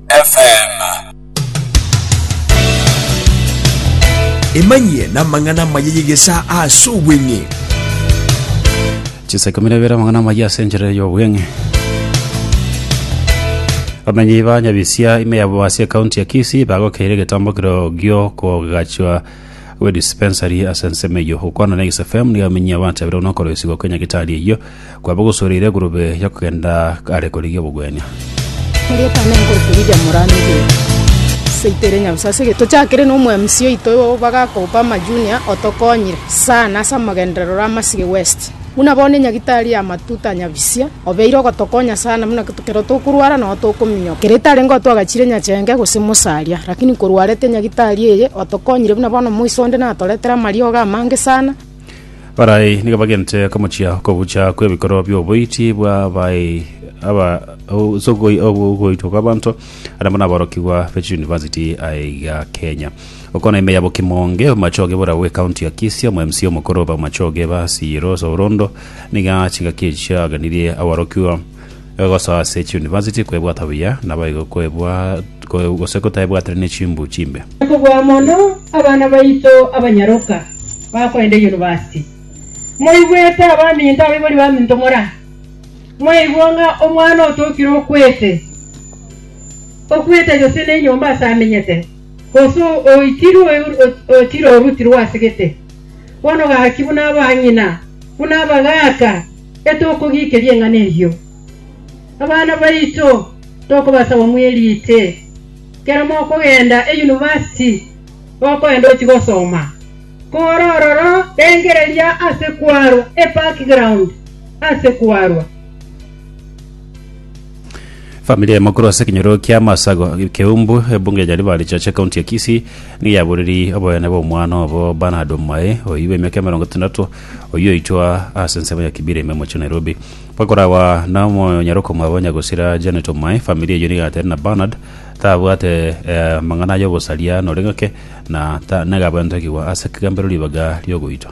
FM. emanyie namang'ana amaya y'egesa ase obweng'e chiseke mire bere amang'ana amaya ase enchera y'obweng'e bamenyi ba nyabisia ime yabo ase ekaunti ya kisi bagokeire egetambokero gio kogachwa gwe dispensary ase ensemo eyo gokwana na isfm nigo amenyi abanto abere onokora esigo kenya gitari eyo Kwaba gosoreire egurube ya kogenda are korigia obogwenia. Erieta ne enko torigia morano egento seito ere nyabusa ase ege tochakire na omo MC oito igo bagakobopa ama junior otokonyire sana ase amogenderero ore amasige west buna bono enyagitari ya matuta nyabisia obeire ogotokonya sana buna kero tokorwara nao tokominyoka kere etare ngo twagachire nyachenge gose mosaria lakini korwarete enyagitari eye otokonyire buna bono moiso onde natoretere amariogo amange sana Barai nigo bagente komochia okogucha kw'ebikorwa bi'oboiti bw'abaei aba o- ase ogoi- ogo- ogoitwa kw'abanto ande buna aborokigwa be chiyunivasiti aye iga Kenya. Okona ime yabo Kimonge, omomachoge bora bwe county ya Kisii, omo MC omokoro obe omomachoge ba Siyiro Sourondo nigo chingaki echi chiagenirie aborokigwa Egosoa ase echiunivasiti kwebwatwa buya, naboigo kwebwa gose kotaebwatire ne chimbu chimbe. Nakobua mono abana baito abanyaroka bakoenda eyunivasiti. Moigwete abaminto, abaibori baminto mora? Mwaigwa ng'a omwana otokire okwete, okwete gose nenyomba ase amenyete, gose oitirwe otire orutirwe ase gete. Bono gaki buna abang'ina, buna abagaaka. Getokogikeria eng'ana eyio, abana baito tokobasaba mweriite. Ekero mokogenda eyunivasiti gokoenda ochie gosoma, kore ororo rengereria ase kwarwa ebackground ase kwarwa. Famiri eye mokorwa ase ekenyoro kia Masago, Keumbu, ebunge ya Nyaribari Chache, county ya Kisii, nigo yaboriri oboyene bwa omwana obo Bernard Omae, oyio bwa emiaka emerongo etandato, oyio oitwa ase ensemo ya Kibira ime mochie Nairobi. Bakoragwa na omonyaroko mwabo Nyagosira Janet Omae, famiri eyio nigo yagateire na Bernard tabwate eh, amang'ana ay'obosaria nore ng'ake na ta- nega abwetekigwa ase ekegamberero ribaga riogoitwa.